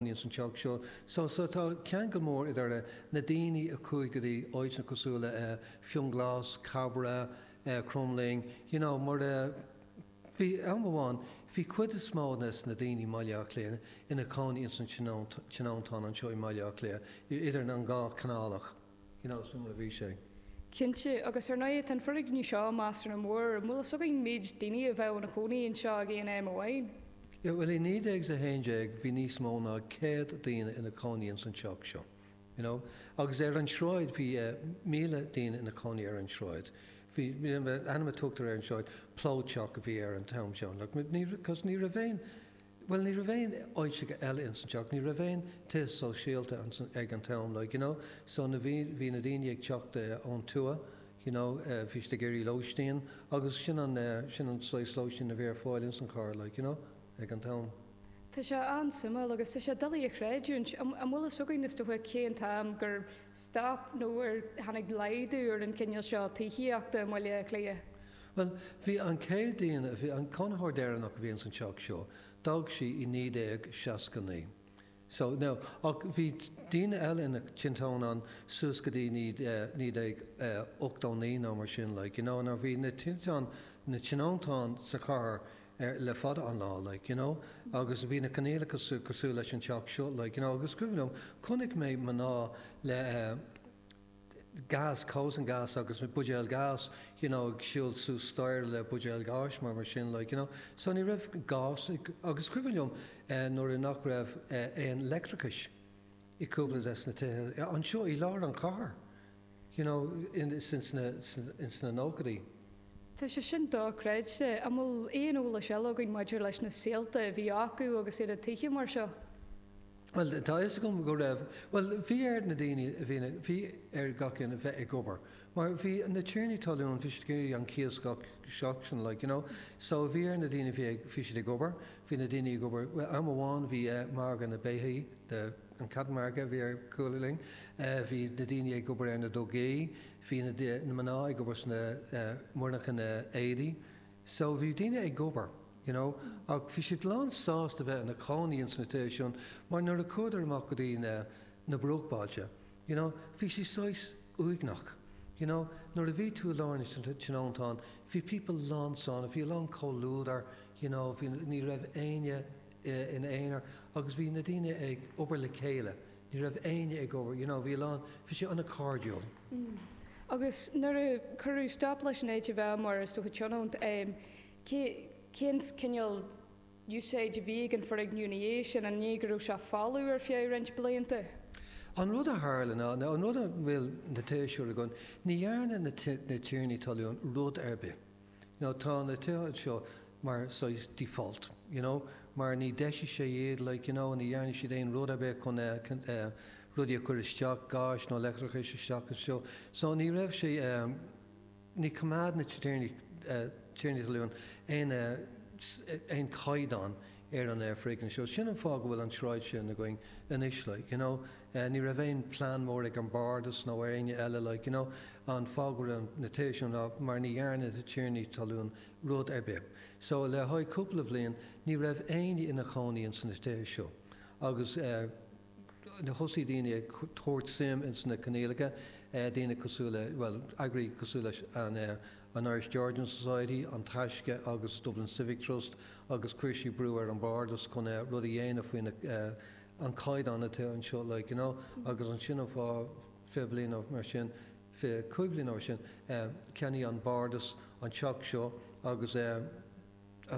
Níl san teach seo so. Tá ceangal mór idir na daoine a chuaigh go dtí áiteanna cosúil le Fionnghlas, Cabrach, Cromghlinn, you know, mar bhí am amháin, bhí cuid is mó de na daoine i mBaile Átha Cliath ina chónaí ins an tionóntán anseo i mBaile Átha Cliath, idir an dhá canálach. Nó suimiúil a bhí sé. Cinnte, agus ar ndóigh tá an foirgneamh seo meastar nó an bhfuil eolas againn, méid daoine a bheadh ina chónaí anseo ag aon am amháin. Bhuel i 1911 bhí níos mó ná céad daoine ina cónaí ins an teach seo, you know, agus ar an sráid bhí míle daoine ina cónaí ar an sráid. Bhí, ainm a tugtar ar an sráid, Plódteach a bhí air an t-am sin, agus ní raibh aon, Bhuel, ní raibh aon áiteacha eile ins an teach, ní raibh aon tithe sóisialta ag an t-am, like, you know, so na bhí, bhí na daoine ag teacht ón tuath, you know, bhí siad ag iarraidh lóistín agus sin an, sin an saghas lóistín a bhí ar fáil ins an chathair, like, you know, ag an t-am. Tá sé an-suimiúil agus tá sé doiligh a chreidiúint, an bhfuil fhios againn is dócha cén t-am gur stop nó ar tháinig laghdú ar an gcineál seo tithíochta i mBaile Átha Cliath? Bhuel, bhí an chéad duine, bhí an cónaitheoir deireanach a bhí ins an teach seo, d'fhág sí i 1969. So, now, ach bhí daoine eile ina dtionóntán ann suas go dtí 1989 nó mar sin, like, you know, now bhí na, na tionóntáin sa chathair ar, le fada an lá, like, you know, agus bhí na coinníollacha cosúil leis an teach seo, like, you know, agus cuimhin liom, chonaic mé mná le, eh, gás, Kosangas agus buidéal gás, you know ag siúl suas staighre le buidéal gáis mar mar sin like, you know. So ní raibh gás agus is cuimhin liom nuair nach raibh aon leictreachas i gcúpla des na tithe anseo i lár an chathair you know ins na nóchaidí. Tá sé sin dochreidte. An bhfuil aon eolais eile againn maidir leis na saolta a bhí acu agus ar a dtaithí mar seo? Bhuel, tá a fhios agam go raibh. Bhuel, bhí ar na daoine a bhí ina, bhí ar gach aon a bheith ag obair. Mar bhí na tiarnaí talún, bhí siad ag iarraidh an cíos gach seachtain, like, you know. So bhí ar na daoine a bhí ag, bhí siad ag obair, bhí na daoine ag obair, bhuel, am amháin bhí eh margadh na beithí, the, an cattle market a bhí ar chúl linn, eh bhí na daoine ag obair ar na dugaí, bhí na, na mná ag obair sna, eh, monarchana na éadaí, So bhí daoine ag obair, you know, ach bhí siad lán sásta bheith ina chónaí ins na tithe sin mar nuair a chuadar amach go dtí na, na bruachbailte, you know, bhí sé saghas uaigneach, you know, nuair a bhí tú i lár na tionóntán, bhí pobal lán sona, bhí a lán comhluadar, you know, bhí, ní raibh éinne in aonar agus bhí na daoine ag obair le chéile, Ní raibh éinne ag obair, you know, bhí a lán, bhí sé an-cairdiúil. Mm. Agus nuair a cuireadh stop leis an áit a bheith mar, is dócha, tionónt, em, cé, cén cineál úsáide a bhí ag an foirgneamh ina dhiaidh sin, an ní go raibh sé folamh ar feadh roinnt blianta? An rud a tharla ná, nó an rud a bhfuil na tithe seo againn, ní dhearna na, na tiarnaí talún rud ar bith. Nó tá na tithe anseo mar saghas default, you know, mar ní dheisigh siad, like, you know, ní dhearna siad aon rud ar bith chun rudaí a chur isteach, gáis nó leictreachais isteach anseo. So ní raibh sé, ní choimeád na tiarnaí talún aon chaighdeán. ar an fhoirgneamh seo. Sin an fáth go bhfuil an tsráid sin againn anois, like, you know. Ní raibh aon plean mór ag an Bardas nó ar éinne eile, like, you know. An fáth go bhfuil na tithe seo ná mar ní dhearna na tiarnaí talún rud ar bith. So, le haghaidh cúpla bliain, ní raibh éinne ina chónaí ins na tithe seo agus, eh, thosaigh daoine ag tabhairt suim ins na coinníollacha, daoine cosúil le, bhuel, eagraí cosúil leis an Irish Georgian Society, An Taisce agus Dublin Civic Trust agus chuir siad brú ar an Bhardas chun rud a dhéanamh faoi na, an caighdeán atá anseo, like, you know. Agus sin an fáth, fiche bliain nó mar sin, fiche cúig bhliain nó mar sin, cheannaigh an Bardas an teach seo agus,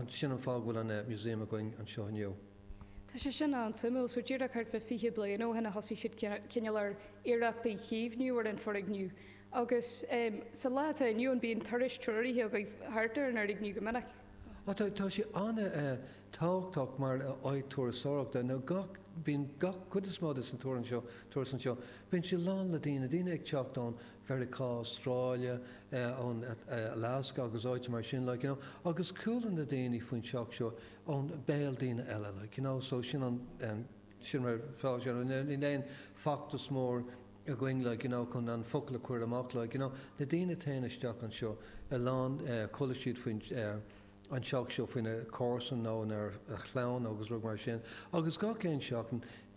Sin an fáth go bhfuil an Museum againn anseo inniu. Tá sé sin an-suimiúil. So díreach thart fá fiche bliain ó shin a thosaigh siad cineál ar iarrachtaí caomhnú ar an fhoirgneamh. Agus sa lá atá inniu ann bíonn turais treoraithe agaibh thart ar an fhoirgneamh go minic. Ó tá, tá sé an-tábhachtach mar áit turasóireachta. Nó gach, bíonn gach, cuid is mó de sna turais anseo, turas anseo, bíonn sé lán le daoine, daoine ag teacht ón Mheiriceá, Astráile, ón Alasca agus áiteanna mar sin, like, you know, agus chuala na daoine faoin teach seo ón béal daoine eile, like, you know, so sin an, sin mar atá sé, níl aon feachtas mór againn, like, you know, chun an focal a chur amach, like, you know, na daoine a théann isteach anseo, a lán, chuala siad faoin, an teach seo faoina comharsan nó a chlann agus rud mar sin agus gach aon seachtain,